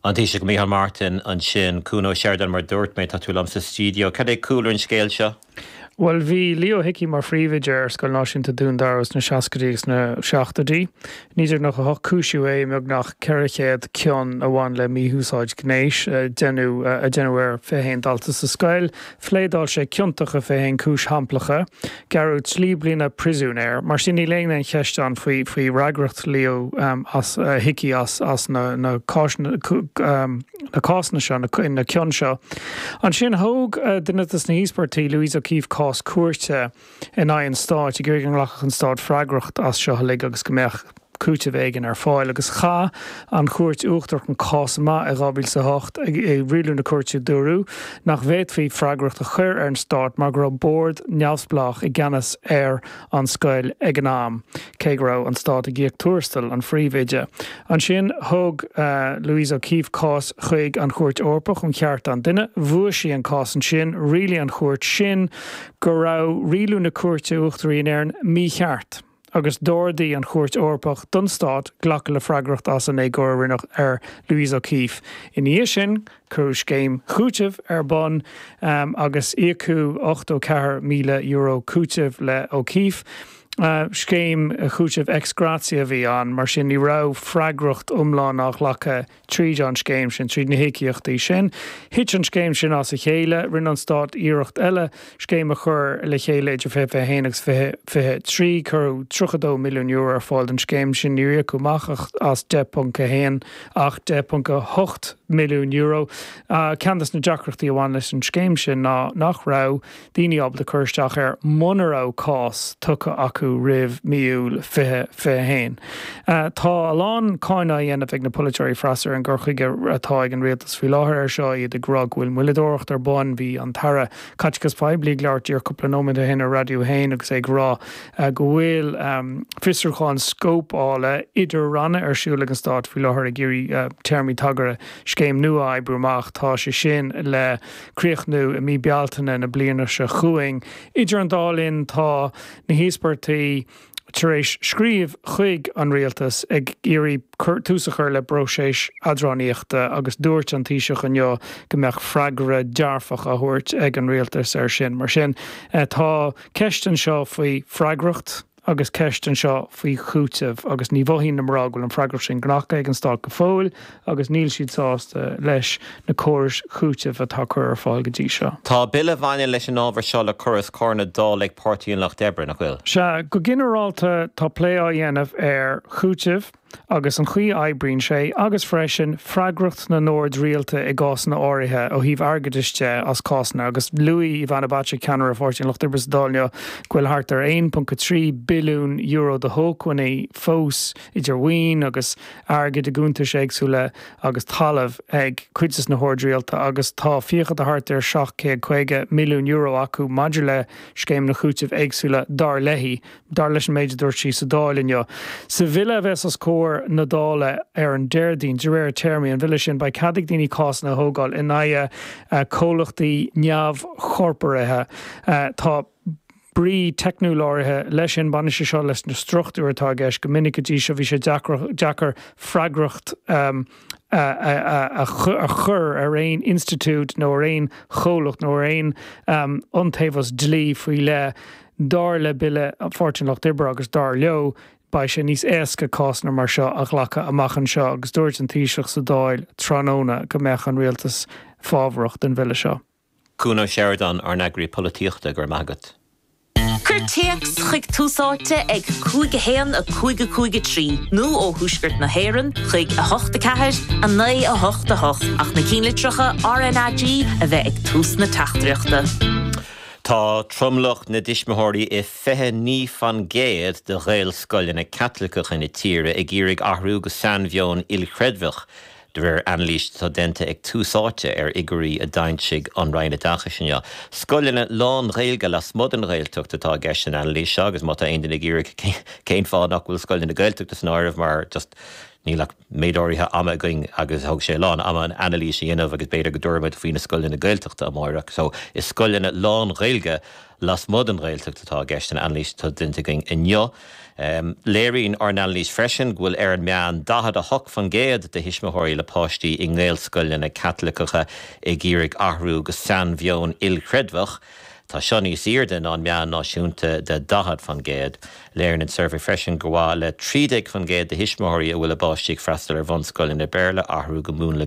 An Taoiseach Micheál Martin ansin. Cuan Ó Seireadáin, mar a dúirt mé, tá tú linn sa stiúideo. Cad é cúlra an scéal seo? Bhuel, bhí Leo Hickey mar phríomhoide ar Scoil Náisiúnta Dún Dara sna seascaidí agus sna seachtóidí. 1998 cúisíodh é i mbeagnach 400 cion a bhain le mí-úsáid ghnéis a déanadh ar 21 dalta sa scoil. Phléadáil sé ciontach i 21 cúis shamplacha, gearradh trí bliana príosúin air. Mar sin, níl aon cheist ann faoi fhreagracht Leo Hickey as na cásanna seo, na cionta seo. Ansin, thóg duine de na híospartaigh, Louise O'Keeffe, cás cúirte. in aghaidh an stáit, ag iarraidh go nglacfadh an stát freagracht as seo uilig agus go mbeadh cúiteamh éigin ar fáil. Agus chaith an Chúirt Uachtarach an cás amach i 2008. I rialú na cúirte dúradh nach bhféadfaí freagracht a chur ar an stát mar go raibh bord neamhspleách i gceannas ar an scoil ag an am, cé go raibh an stát ag íoc tuarastal an phríomhoide. Ansin thug Louise O'Keeffe cás chuig an Chúirt Eorpach um Chearta an Duine. Bhuaigh sí an cás ansin. Rialaigh an chúirt sin go raibh rialú na Cúirte Uachtaraí in Éirinn mícheart agus d'ordaigh an Chúirt Eorpach don Stát glacadh le freagracht as an éagóir a rinneadh ar Louise O'Keeffe. Ina dhiaidh sin, cuireadh scéim chúitimh ar bun agus íocadh €84,000 cúitimh le O'Keeffe. Scéim chúitimh ex gratia a bhí ann, mar sin ní raibh freagracht iomlán á ghlacadh Tríd an scéim sin, tríd na híocaíochtaí sin, thit an scéim sin as a chéile. Rinne an stát iarracht eile scéim a chur le chéile idir 2021 agus 2023. Cuireadh €32 milliún ar fáil don scéim sin. Níor íocadh amach ach as 10.1, ach €10.8 milliún. Ceann de na deacrachtaí a bhain leis an scéim sin ná nach raibh, daoine ábalta cur isteach air muna raibh cás tugtha acu roimh mí Iúil 2021. Tá a lán cáineadh á dhéanamh ag na polaiteoirí Freas ar an gcur chuige atá ag an rialtas faoi láthair air seo, iad ag rá go bhfuil moilleadóireacht ar bun. Bhí an tAire Caiteachais Poiblí ag labhairt air cúpla nóiméad ó shin ar Raidió 1 agus é ag rá go bhfuil fiosrúchán scóipeála idir-ranna ar siúl ag an stát faoi láthair ag iarraidh téarmaí tagartha scéim nua a oibriú amach. Tá sé sin le. críochnú i mí Bealtaine na bliana seo chugainn. Idir an dá linn tá na híospartaigh tar éis scríobh chuig an Rialtas ag iarraidh tús a chur le próiseas eadránaíochta agus dúirt an Taoiseach inniu go mbeadh freagra dearfach á thabhairt ag an Rialtas air sin. Mar sin tá ceist anseo faoi freagracht. Agus ceist anseo faoi chúiteamh, agus ní mhothaíonn na mná go bhfuil an freagracht sin glactha ag an stát go fóill, agus níl siad sásta leis na córais chúitimh atá curtha ar fáil go dtí seo. Tá bille a bhaineann leis an ábhar seo le cur os comhair na Dála ag Páirtí an Lucht Oibre, nach bhfuil? Sea, go ginearálta tá plé á dhéanamh ar chúiteamh. agus an chaoi a oibríonn sé, agus freisin freagracht na n-ord rialta i gcásanna áirithe ó thaobh airgeadais de as cásanna, agus luaigh Ivana Bacik, ceannaire Pháirtí an Lucht Oibre sa Dáil inniu, go bhfuil thart ar €1.3 billiún de shócmhainní fós, idir mhaoin agus airgead i gcuntais éagsúla agus talamh, ag cuid de na hoird rialta agus tá fiacha de thart ar €750 milliún acu maidir le scéimeanna cúitimh éagsúla, dar léi. dar leis an méid a dúirt sí sa Dáil inniu. Sa bhille a bheas os comhair na Dála ar an Déardaoin, de réir téarmaí an bhille sin, beidh cead ag daoine cásanna a thógáil in aghaidh comhlachtaí neamhchorporaithe. Tá brí teicniúil áirithe leis sin, baineann sé seo leis na struchtúir atá i gceist. Go minic go dtí seo bhí sé deacair freagracht a chur ar aon institiúid nó ar aon chomhlacht nó ar aon iontaobhas dlí faoi leith. Dar le bille Pháirtí an Lucht Oibre, agus dar leo, beidh sé níos éasca cásanna mar seo a ghlacadh amach anseo agus dúirt an Taoiseach sa Dáil tráthnóna go mbeadh an Rialtas fábharach don bhille seo. Cuan Ó Seireadáin, ár n-eagraí polaitíochta, go raibh maith agat. Cuir téacs chuig Tús Áite ag 5 1 5 5 3 nó ó Thuaisceart na hÉireann chuig 8 4 9 8 8 ach na cinnlitreacha RNAG a bheith ag tús na teachtaireachta. Tá tromlach na dtuismitheoirí i 29% de Ghaelscoileanna Caitliceacha na tíre ag iarraidh athrú go sainmheon ilchreidmheach, de réir anailís atá déanta ag Tús Áite ar fhigiúirí a d'fhoilsigh an Roinn Oideachais inniu. Scoileanna lán-Ghaeilge lasmuigh den Ghaeltacht atá i gceist san anailís seo agus má tá aon duine ag iarraidh cén fáth nach bhfuil scoileanna Gaeltachta san áireamh mar just níl ach méid áirithe ama againn agus thóg sé a lán ama an anailís a dhéanamh agus b'fhéidir go dtabharfaimid faoi na scoileanna Gaeltachta amáireach. So is scoileanna lán-Ghaeilge lasmuigh den Ghaeltacht atá i gceist san anailís atá déanta againn inniu. Léiríonn ár n-anailís freisin go bhfuil ar an meán 48% de thuismitheoirí le páistí i nGaelscoileanna Caitliceacha ag iarraidh athrú go sainmheon ilchreidmheach, Tá seo níos airde ná an meán náisiúnta de 40%. Léiríonn an suirbhé freisin gur mhaith le 13% de thuismitheoirí a bhfuil a bpáistí ag freastal ar bhunscoileanna Béarla athrú go múnla